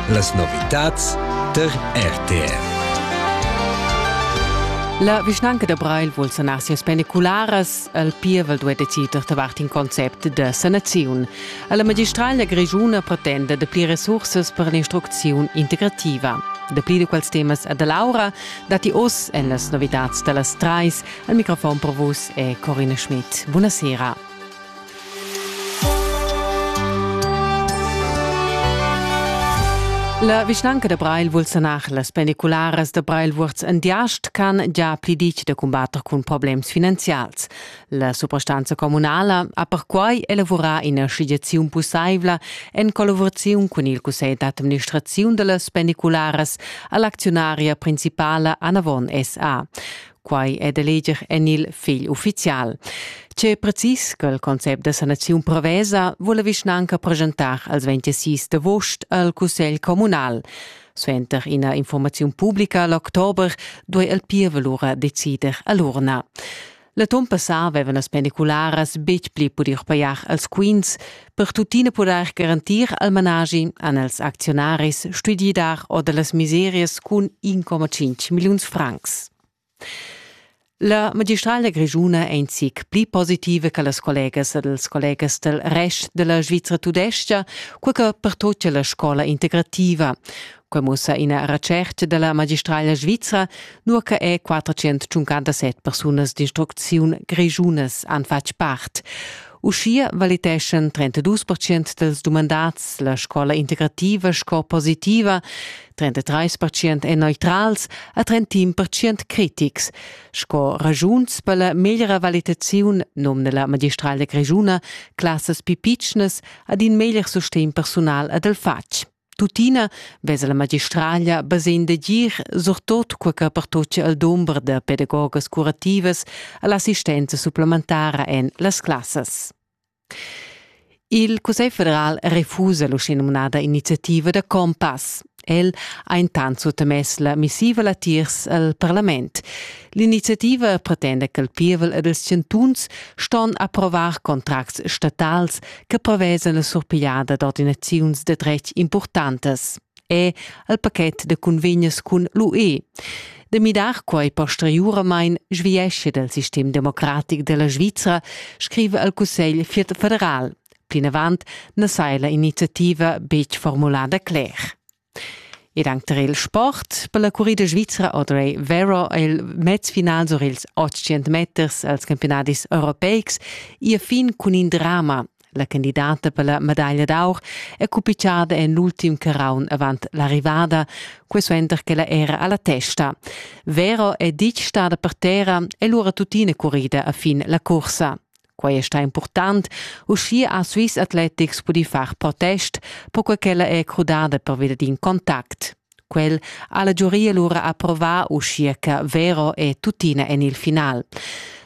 Las novitads tar RTR. La vischnanca da Breil vul sanar sias pendicularas. El pievel duai decider davart in concept da sanaziun. La magistraglia grischuna pretenda da pli resursas per l'instrucziun integrativa. Da pli da quels temas a da Laura datti oz en las novitads da las trais. Al microfon per vus è Corina Schmidt. Buonasera. La vischnanca da Breil vul sanar las pendicularas da Breil-Vuorz en Diast ch'han già pli ditg da cumbatter cun problems finanzials. La suprastanza communala ha perquai elavurà ina schliaziun pussaivla en collaboraziun cun il cussegl d'administraziun da las pendicularas a l'acziunaria principala Anavon SA. Quai è da leger en il fegl uffizial. Tge precis che il concept da sanaziun prevesa vula vischnanca presentar als 26 d'agost al Cussegl communal. Suenter ina informaziun pubblica l'october duai il pievel lura decider a l'urna. La temp passà avevan las pendicularas betg pli pudi pajar als quins, Per tuttina pudair garantir al managi han els acziunaris stuì dar or da las miserias cun 1,5 milliuns francs. La magistrala grischuna è in zic pli positiva che las collegas ed els collegas del rest della Svizzera tudesca, quel che pertocca la scola integrativa. Quai mussa ina retschertga da la magistraglia svizra, nua che è 457 persunas d'instrucziun grischunas han fatg part. Uschia valiteschan 32 percent dals dumandads la scola integrativa sco positiva, 33 percent èn neutrals e 31 percent critics. Sco ragiuns per la meglra valitaziun nomna la magistraglia grischuna classas più pitschnas ad in meglier sustegn personal ed al fatg. Tuttina vesa la magistraglia basegn da gir surtot quei che pertocia al dumber da pedagogas curativas all'assistenza supplementara en las classas. Il Cussegl federal refusa l'uschenumnada iniziativa da Compass. El ha intant suttamess la missiva latiers al parlament. L'iniziativa pretenda ch'el pievel ed ils chantuns ston approvar contracts statals che prevesa la surpigliada d'ordinaziuns de dretg importantas è al paket de convegnes cun l'UE. De midar quai posteriuramain sviesce del sistem democratic della Svizra, scrive al Cussegl federal. Plinavant na sai la iniziativa betg formulada cler. Ed anc tar il sport per la currida svizra Audrey Vero è il mezfinal sur ils 800 meters als campiunadis europeics ir fin cun in drama. La candidata per la medaglia d'aur è cupitgada en l'ultim carraun avant l'arrivada, quai suenter ch'ella era a la testa. Vero è ditg stada per terra e lura tuttina currida a fin la cursa. Quai è stà impurtant. Uschia ha Swiss Athletics pudì far protest, perquai ch'ella è crudada pervia d'in contact. Quel ha la giuria lura approvà, uschia che Vero è tuttina en il final.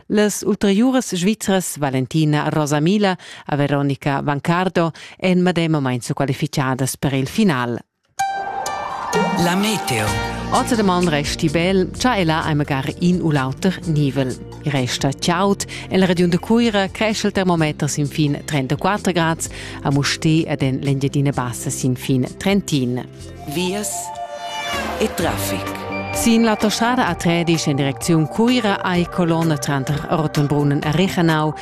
Las ulteriuras svizras Valentina Rosamila e Veronica Vancardo èn medemamain qualificadas per il final. La meteo. Ozer de man resti bel, cha ella ei magari in u l'auter nivel. I resta chaud, en la regiun de Cuira cresce il termometer sin fin 34 grad, a Mustè ed en l'Engiadina Bassa sin fin 31. Vias e traffic. Sin l'autostrada A13 in direcziun Cuira ei colonna tranter Rottenbrunnen e Rechenau